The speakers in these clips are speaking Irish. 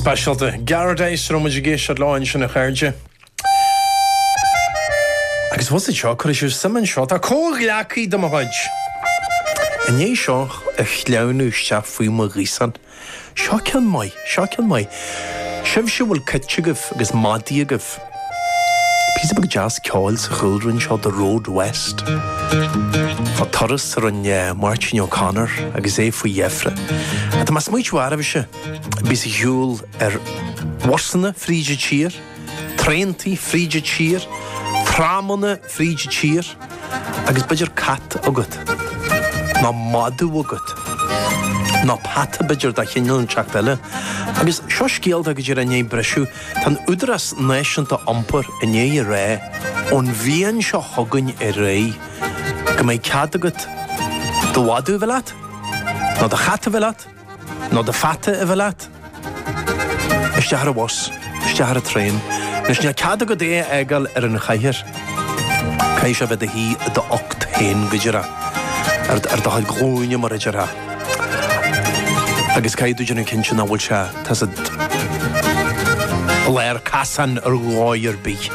Speisialta. Garadice, a raibh muid ag éisteacht leo ansin, a chairde. Agus bhfuil 'fhios agat seo, cuirfidh sibh suim anseo, tá comhghleacaí de mo chuid. I ndiaidh seo a shleamhnú isteach faoi mo ghaosán, seo ceann maith, seo ceann maith. Sibhse a bhfuil cait agaibh agus madaidh agaibh. Píosa beag deas ceoil sa chúlra anseo The Road West. Ó turas a rinne Máirtín O'Connor agus é faoi dheifre. Tá mé ag smaoitiú oraibhse a bíos ag siúl ar bhusanna fríd an tír, traentaí fríd an tír, tramanna fríd an tír agus b'fhéidir cat agat, ná madadh agat, ná peata b'fhéidir de chineál inteacht eile. Agus seo scéal atá go díreach i ndiaidh briseadh. Tá an Údarás Náisiúnta Iompair i ndiaidh a rá ón bhliain seo chugainn ar aghaidh go mbeidh cead agat do mhadadh a bheith leat, nó do chat a bheith leat, nó do pheata a bheith leat isteach ar an bhus, isteach ar an traein. Anois, níl cead agat é a fhágáil ar an chathaoir. Caithfidh sé a bheith ina shuí i do ucht féin, go díreach, ar do chuid glúine, mar a déarfá. Agus caithfidh tú déanamh cinnte nach bhfuil sé. Tá siad i lár casáin ar dhóigh ar bith.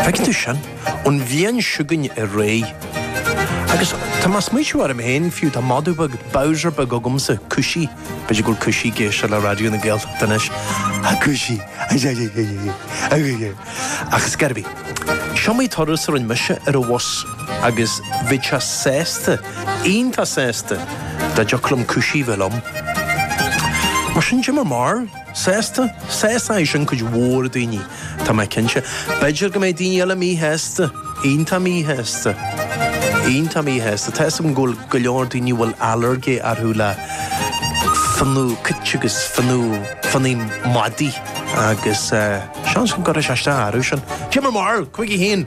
Féadann tú sin ón bhliain seo chugainn ar aghaidh. Agus tá mé ag smaoitiú orm féin, fiú, tá madadh beag, Bowser beag agamsa, Cushy, b'fhéidir go bhfuil Cushy ag éisteacht le Raidió na Gaeltachta anois, A Cushy! Ach ar scor ar bith, is iomaí turas a rinne mise ar an bhus agus bheadh sé sásta. iontach sásta. Dá dtiocfadh liom Cushy a bheith liom. Mar sin caidé bhur mbarúil? Sásta? Sásóidh sé sin cuid mhór daoine, tá mé cinnte. B'fhéidir go mbeidh daoine eile míshásta. Iontach míshásta. Iontach míshásta. Tá 'fhios agam go bhfuil go leor daoine a bhfuil ailléirge orthu le fionnadh cait agus fionnadh fionnadh madaidh agus seans go gcuirfidh sé isteach orthu sin. Caidé bhur mbarúil? Chuige féin!